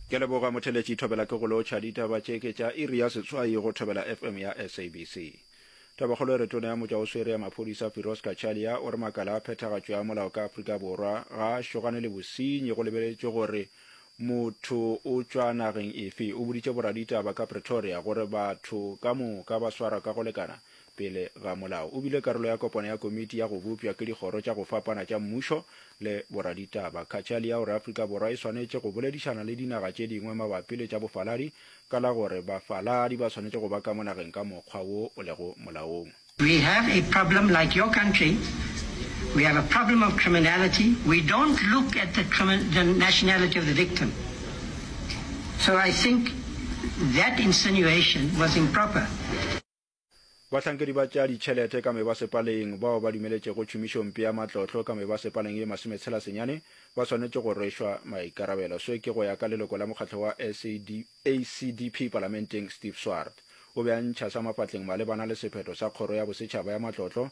Ke leboga motheletši Thobela ke go lotšha ditaba tše ke tša iri ya setswai go Thobela FM ya SABC. Tabakgolo e re tona ya motša o swere ya maphodisa Firoz Cachalia o re makala a phethagatšo ya molao ka Afrika Borwa ga a šogane le bosenyi go lebeletšwe gore motho o tšwa nageng efe. O boditše boraditaba ka Pretoria gore batho ka moka ba swarwa ka go lekana pele ga molao. O bile karolo ya kopano ya komiti ya go bopša ke dikgoro tša go fapana tša mmušo le boraditaba. Cachalia o re Afrika Borwa e swanetše go boledišana le dinaga tše dingwe mabapi le tša bofaladi ka la gore bafaladi ba swanetše go ba ka mo nageng ka mokgwa wo o lego molaong. We have a problem like your country, we have a problem of criminality, we don't look at the crimin, the nationality of the victim. So I think that insinuation was improper. Bahlankedi ba tša ditšhelete ka mebasepaleng bao ba dumeletšego tšhomišompe ya matlotlo ka mebasepaleng ye masometshelasenyane ba swanetše go rwešwa maikarabelo. Seo ke go ya ka leloko la mokgatlo wa SADP palamenteng Steve Swart. O be a ntšha sa mafatleng malebana le sephetho sa Kgoro ya Bosetšhaba ya Matlotlo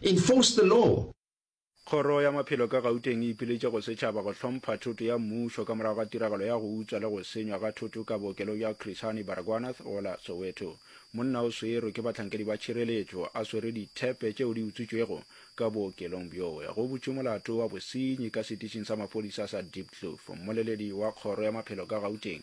Enforce the law. Kgoro ya Maphelo ka Gauteng e ipiletše go setšhaba go hlompha thoto ya mmušo ka morago ga tiragalo ya go utswa le go senywa ga thoto ka bookelong bja Chris Hani Baragwanath go la Soweto. Monna o swerwe ke bahlankedi ba tšhireletšo a swere dithepe tšeo di utswitšwego ka bookelong bjoe. Go butšwe molato wa bosenyi ka setišing sa maphodisa sa Diepkloof. Mmoleledi wa Kgoro ya Maphelo ka Gauteng,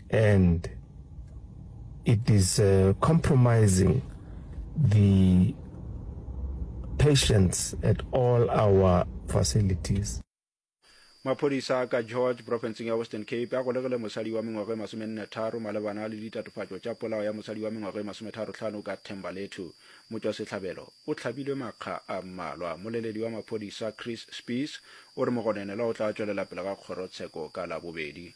and it is uh, compromising the patients at all our facilities. maphodisa a ka george profenseng ya western cape a golegile mosadi wa mengwago e masomennetharo malebana le ditatofatšo tša polao ya mosadi wa mengwago e masometharotlhano ka thembalethu motšwasehlabelo o hlabilwe makga a mmalwa moleledi wa maphodisa chris spees o re mogonenelwa o tla tšwelela pele ga kgorotsheko ka labobedi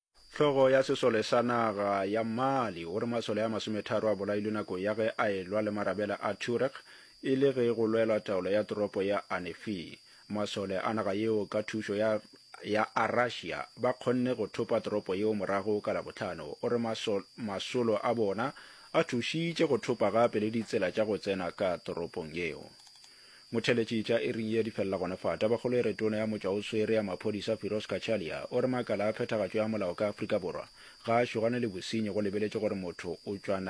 Hlogo ya sesole sa naga ya Mali o re masole a masometharo a bolailwe nako ya ge a elwa le marabela a Tuareg e le ge go lwelwa taolo ya toropo ya Anefi. Masole a naga yeo ka thušo ya ya a Russia ba kgonne go thopa toropo yeo morago ka Labohlano. O re masolo a bona a thušitše go thopa gape le ditsela tša go tsena ka toropong yeo. Motheletši tša Eriya di felela gona fa. Tabakgolo e re Tona ya Motšwaoswere ya Maphodisa Firoz Cachalia o re makala a phethagatšo ya molao ka Afrika Borwa ga a šogane le bosenyi go lebeletše gore motho o tšwa